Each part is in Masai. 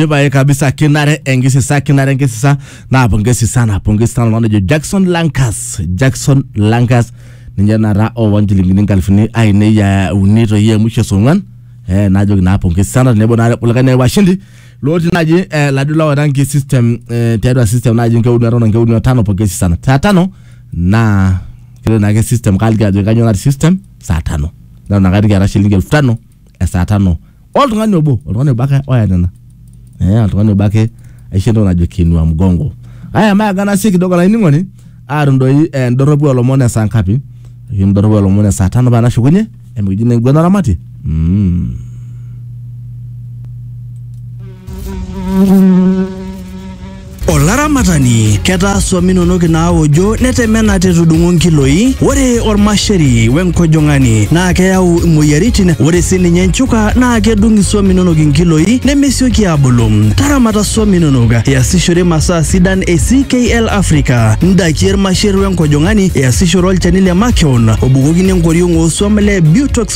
ibaye kabisa kinare enkisisa kinare enkisisa naa pongesi sana pongesi sana oltung'ani ojo jackson lankas jackson lankas ninye naata owa nchilingini nkalifuni ainei ya uni toi e mwisho esong'uan eh, najoki naa pongesi sana tenebo naa kulikae naa washindi lotii naaji eh, laduo la oranki system eh, tiatua system naaji nkeuni aton nkeuni tano pongesi sana saa tano naa kilo naake system kaaliki ajo kanyoo natii system saa tano nalo nakati kiata shilingi elfu tano esaa tano oltung'ani obo oltung'ani obo ake oya nena eh, oltung'ani obo ake aisho entoki najo kinua mgongo aya maagana sii kidogo olainining'oni atum doi eh, ndorropu olomon esaa ngapi ayieu ndorropu olomon esaa tano paa nashukunye emikiji naa enguana oramatie mm. Olaramatani, ketaa swam inonok inaawojo netemena te tudung'o nkiloi. Ore olmasheri we nkojong'ani naa keyau imoyiaritin. Ore sii ninye nchuka naa kedung iswam inonok inkiloi nemesioki aabulu. Taramata swam inonok iasishore masaa sidan e CKL Africa, ndaiki e lmasher we nkojong'ani, iasishore olchani le makeon obukokini enkoriong oo swam le Butox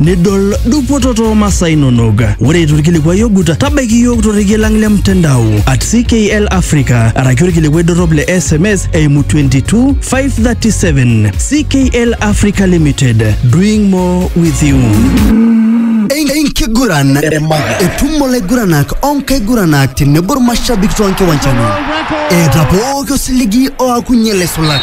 nidol dupoto too masaa inonok. Ore eitu ilkilikuai ogut, tabaiki iyiook torrekie lang le mtandao at CKL Africa araki olkilikuai dorrop le SMS eimu 22 537 CKL Africa Limited doing more with you. enkiguran etum olaiguranak onkaiguranak tenebo irmashabik toonkiwanjani eeta pooki osiligi oakunye laisulak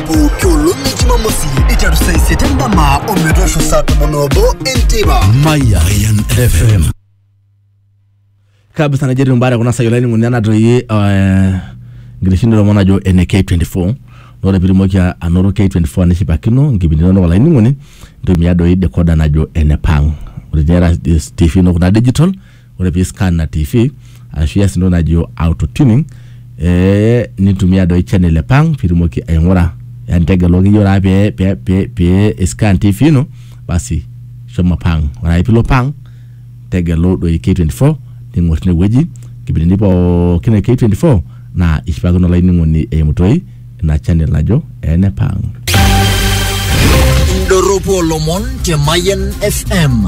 pooki olong e jumamosi iteru saa isiet endama ometoosho saa tomon obo enteipa Mayan FM. kabisa najetu mbara kuna sayo laini nguni anatoi eh, nkiteshini lomon ajo ene K24 nore pirimoki anoto K24 nishipakino nkipindi nono laini nguni ntumia doi decoder najo ene pang ore tera TV no kuna digital ore pii scan na tv arashu ias entoki najo auto tuning ee nintumia doi channel epang pitumoki aing'ura yani tegelu akeyie ore ake pee pee pee scan tv ino basi shomo pang ore ake pilo pang tegelu doi K24 ning'or tinewueji nkipindini pookin e K24 naa ishipakino olainining'oni eimu toi ina channel najo ene pang. Indorropu olomon te Mayian FM.